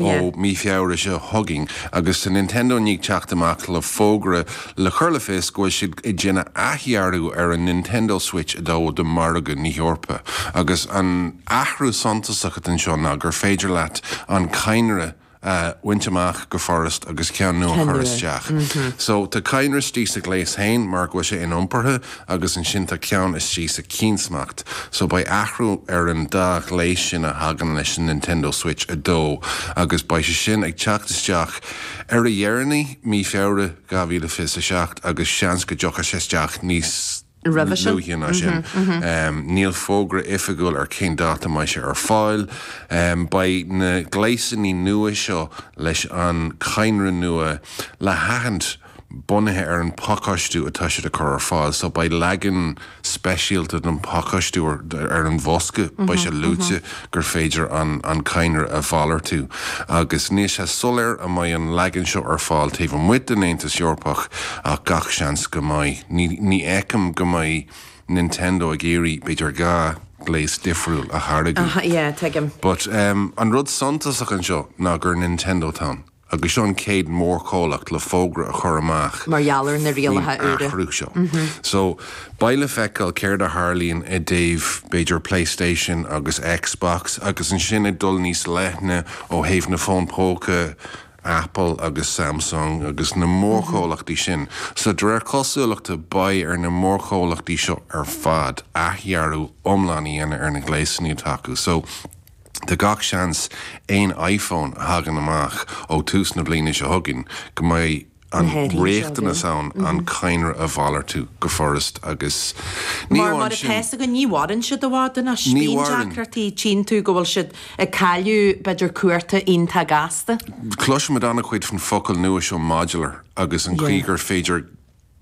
ó mí Feabhra seo chugainn agus tá Nintendo i ndiaidh teacht amach le fógra le cur le fios go bhfuil siad ag déanamh athdhearadh ar an Nintendo Switch 2 do mhargadh na hEorpa. Agus an athrú suntasach atá anseo ná gur féidir leat an cadhnra a bhaint amach go furast agus ceann nua a chur isteach. So, tá cadhnra istigh sa ghléas féin mar go bhfuil sé iniompartha, agus ansin tá ceann istigh sa cheann smacht, so beidh athrú ar an dá ghléas sin a thagann leis an Nintendo Switch 2 agus beidh sé sin ag teacht isteach ar a dheireanaí mí Feabhra 2027 agus seans go dtiocfaidh sé isteach níos luaithe ná sin. Níl fógra oifigiúil ar cén dáta a mbeidh sé ar fáil. Beidh na gléasanna nua seo leis an cadhnra nua le haithint. bunaithe ar an bpacáistiú atá siad a chur ar fáil. So beidh leagan speisialta den phacáistiú ar an bhosca, beidh sé luaite gur féidir an cadhnra a mhalartú. Agus níl sé soiléir an mbeidh an leagan seo ar fáil taobh amuigh den Aontas Eorpach ach gach seans go mbeidh. Ní fheicim go mbeidh Nintendo ag iarraidh b'fhéidir dhá ghléas difriúil a tháirgeadh. But an rud suntasach anseo ná gur Nintendo atá ann. agus seo an chéad mhórchomhlacht le fógra a chur amach mar gheall ar na faoin rialacha úra. athrú seo. So, beidh le feiceáil céard a tharlaíonn i dtaobh, b'fhéidir, Playstation agus Xbox, agus ansin ag dul níos leithne ó thaobh na bhfón póca, Apple agus Samsung agus na mórchomhlachtaí sin. So, de réir cosúlachta, beidh ar na mórchomhlachtaí seo ar fad athdhearadh iomlán a dhéanamh ar na gléasanna atá acu. So. Tá gach seans aon iPhone a thagann amach ó tús na bliana seo chugainn go mbeidh an riachtanas ann an cadhnra a mhalartú go furast agus mar atá a fhios againn, ní mhaireann siad i bhfad anois. Bíonn deacrachtaí cionn is go bhfuil siad ag cailleadh, b'fhéidir cuarta iontach gasta. Cloisimid an-chuid faoin bhfocal nua seo modular agus an chaoi gur féidir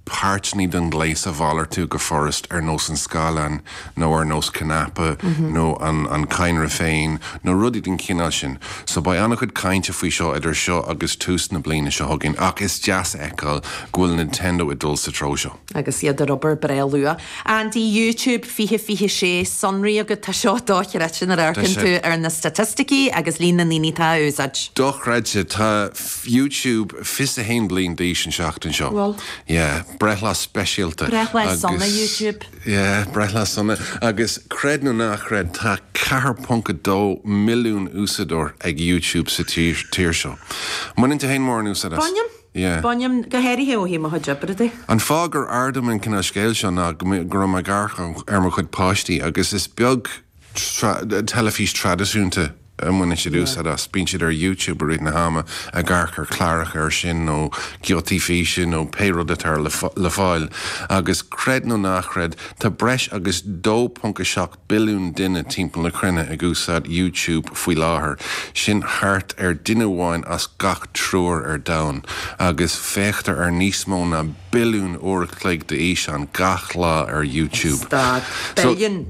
páirteanna den ghléas a mhalartú go furast, ar nós an scáileáin, nó ar nós cnaipe, nó an cadhnra féin, nó rudaí den chineál sin. So beidh an-chuid cainte faoi seo idir seo agus tús na bliana seo chugainn, ach is deas a fheiceáil go bhfuil Nintendo ag dul sa treo seo. Agus iad ag obair breá luath. Andy, YouTube 2026 sonraí agat, tá seo dochreidte nuair a amharcann tú ar na staitisticí agus líon na ndaoine atá á úsáid. Dochreidte! Tá YouTube 21 bliain d'aois an tseachtain seo. Bhfuil? Yeah. Breithlá speisialta agus. Breithlá sona YouTube. Yeah. Breithlá sona. Agus creid nó ná creid tá 4.2 milliún úsáideoir ag YouTube sa tír seo. Mbaineann tú féin mórán úsáid as? Bainim. Yeah. Bainim. Go háirithe ó thaobh mo chuid oibre de. An fáth gur ardaím an cineál scéil seo ná go raibh mé ag amharc ar mo chuid páistí agus is beag teilifís traidisiúnta a mbaineann siad úsáid as. Bíonn siad ar YouTube i rith na hama ag amharc ar cláracha ar sin nó giotaí físe nó pé rud atá le fáil. Agus creid nó ná chreid, tá breis agus 2.7 billiún duine timpeall na cruinne ag úsáid YouTube faoi láthair, sin thart ar duine amháin as gach triúr ar domhan, agus féachtar ar níos mó ná billiún uair a chloig d'fhíseáin gach lá ar YouTube. Stad. So. Billiún!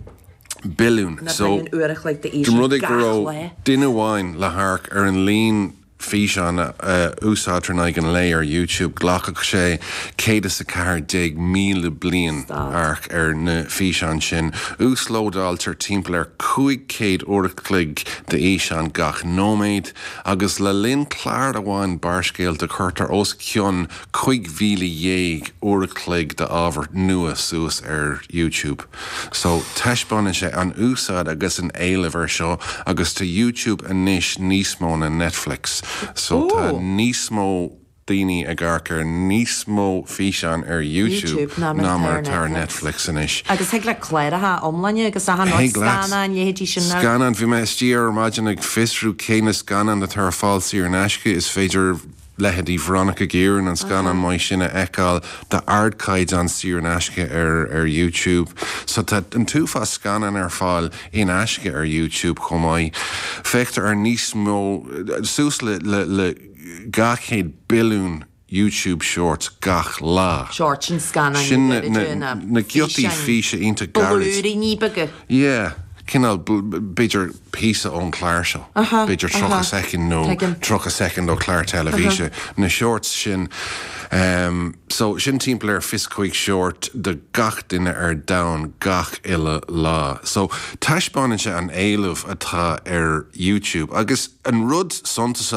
billiún so dá rud é go raibh duine amháin le hamharc ar an líon físeán a úsáidtear in aghaidh an lae ar YouTube, ghlacfadh sé 114,000 bliain amharc ar na físeáin sin. Uaslódáiltear timpeall ar 500 uair a chloig d'fhíseáin gach nóiméad, agus le linn clár amháin Barrscéalta cuirtear os cionn 15,000 uair a chloig d'ábhar nua suas ar YouTube. So, taispeánann sé an úsáid agus an éileamh ar seo agus tá YouTube anois níos mó ná Netflix. So, tá Ooh! níos mó daoine ag amharc ar níos mó físeán ar YouTube ná mar atá ar Netflix anois. Agus thig le cláracha iomláine agus achan rud, Thig leat. scannáin, leithéidí sin na. Scannáin, bhí mé istigh ar maidin ag fiosrú cé na scannáin atá ar fáil saor in aisce, is féidir. leithéidí Veronica Guerin an scannán maith sin a fheiceáil d'ardchaighdeán saor in aisce ar YouTube. So tá an t-uafás scannán ar fáil in aisce ar YouTube chomh maith. Féachtar ar níos mó, suas le 200 billiún YouTube Shorts gach lá. Sin na giotaí físe iontach beaga? Yeah, cineál, b'fhéidir. píosa ón clár seo, b'fhéidir 30 soicind nó 30 soicind ó chlár teilifíse, na shorts sin. So, sin timpeall ar fiche is cúig short do gach duine ar domhan gach uile lá. So, taispeánann sé an éileamh atá ar YouTube. Agus an rud suntasach.